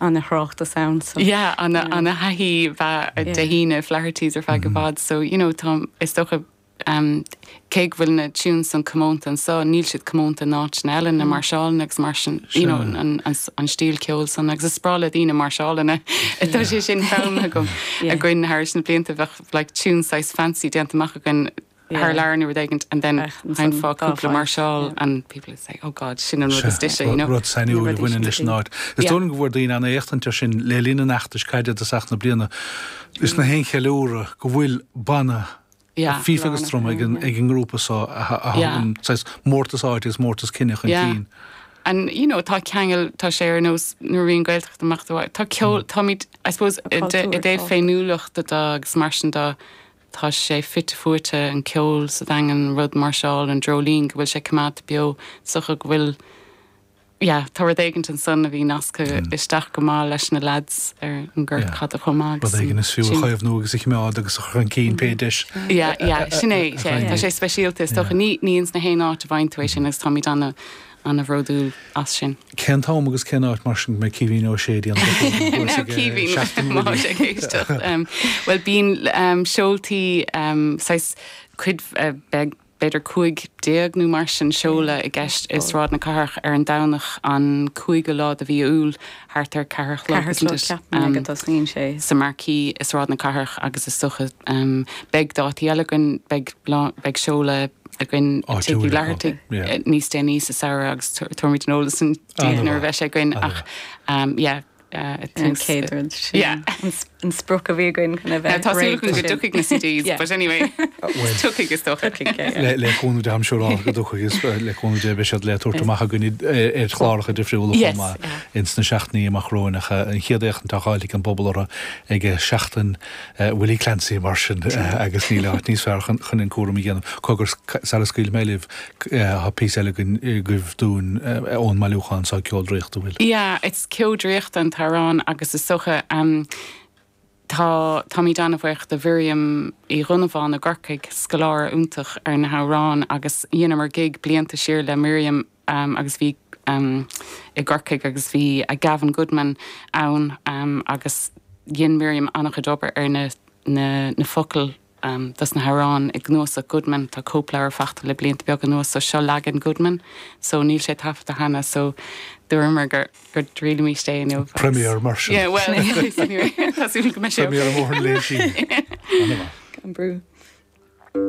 ana thráchtas ann so. Yeah ana ana thaithí bheith Dé hAoine Flaherty's ar feadh i bhfad so you know tá is dócha em cé go bhfuil na tunes san comónta anso níl siad comónta in áiteanna eile na máirseálanna agus mar sin you know an an an stíl ceoil san agus is breá le daoine máirseálanna atá sé sin foghlamtha agam againn thairis na blianta bheadh like tunes saghas fancy déanta amach againn thar lear nó rud éigint and then sheinnfeá cúpla máirseáil and people would say oh god sin an rud is dise you know. Rud sainiúil a bhaineann leis an áit. Is dóigh go bhfuair daoine an-éachtaint air sin le linn an fheachtais caide i dtosach na bliana is na haon cheiliúradh go bhfuil banna fífe agus druma ag an ag an ngrúpa so a thugann saghas mórtas áite is mórtas cine chun cinn. And you know tá ceangail tá sé ar nós nuair a bhíonn Gaeltacht amach do tá ceol táimid I suppose i dtaobh féiniúlachta de agus mar sin de Tá sé fite fuaite, an ceol, sa Daingean, rud, máirseáil, an dreoilín, go bhfuil sé coimeádta beo, is dócha, go bhfuil, yeah, tá rud éigint ansan a bhí nasctha isteach go maith leis na leaids ar an ngort Yeah. caide chomh maith Rud agus éigin an, is fiú a sin, chaomhnú agus a choimeád agus a chur chun cinn pé deis. yeah, yeah, sin é, yeah, tá sé speisialta, is Yeah. dócha, ní, ní ins na haon áit a bhfaigheann tú é sin agus táimid ana, ana-bhródúil as sin. Cén t-am agus cén áit mar sin go mbeidh Caoimhín Ó Sé ag déanamh a chéad duais ag Seachtain na Gaeilge? Caoimhín ag éisteacht. Bhuel bíonn seoltaí saghas cuid beag b'fhéidir 15 nó mar sin seoladh i gceist i Sráid na Cathrach ar an Domhnach an cúigiú lá de mhí Iúil thart ar ceathair a chlog, ceathair a chlog ceapann mé go dtosaíonn sé. sa marquee i Sráid na Cathrach agus is dócha beidh dátaí eile againn, beidh beidh seoladh againn ag Tigh Uí Fhlathartaigh níos déanaí sa samhradh agus tabharfaimid an t-eolas san daoibh nuair a bheidh sé againn ach yeah an chéad rud sin. an sprioc a bhí againn chun a bheith réidh. Tá súil againn go dtiocfaidh na CDs but anyway tiocfaidh is dócha. Le cúnamh Dé I'm sure go dtiocfaidh is le cúnamh Dé beidh siad le tabhairt amach againn ar chláracha difriúla chomh maith ins na seachtainí amach romhainn ach an chéad fhéachaint atá le fáil ag an bpobal orthu ag Seachtain Willie Clancy mar sin agus níl áit níos fearr chun an cúram a dhéanamh. Cogar sara scaoilfidh mé libh tá píosa eile againn agaibh dúinn ón mbailiúchán seo Ceo Draíochta an bhfuil. ceo draíochta an t-amhrán agus is dócha tá táimid an-bhuíoch do Mhiriam Uí Dhonnabháin i gCorcaigh, scoláire iontach ar na hamhráin agus dheineamar gig blianta siar le Miriam agus bhí i gCorcaigh agus bhí Gavin Goodman ann agus dhein Miriam an-chuid obair ar na na focail dos na hamhráin i gcnuasach Goodman. Tá cóipleabhar fachta le blianta beaga anuas so seo leagan Goodman so níl sé taifeadta cheana so dúramar go dtriailfimíst é inniu agus. Premiere mar sin. Yeah well anyway tá súil agam go mbeidh sé ok. Premiere mór an lae inniu. An-mhaith. Gan brú.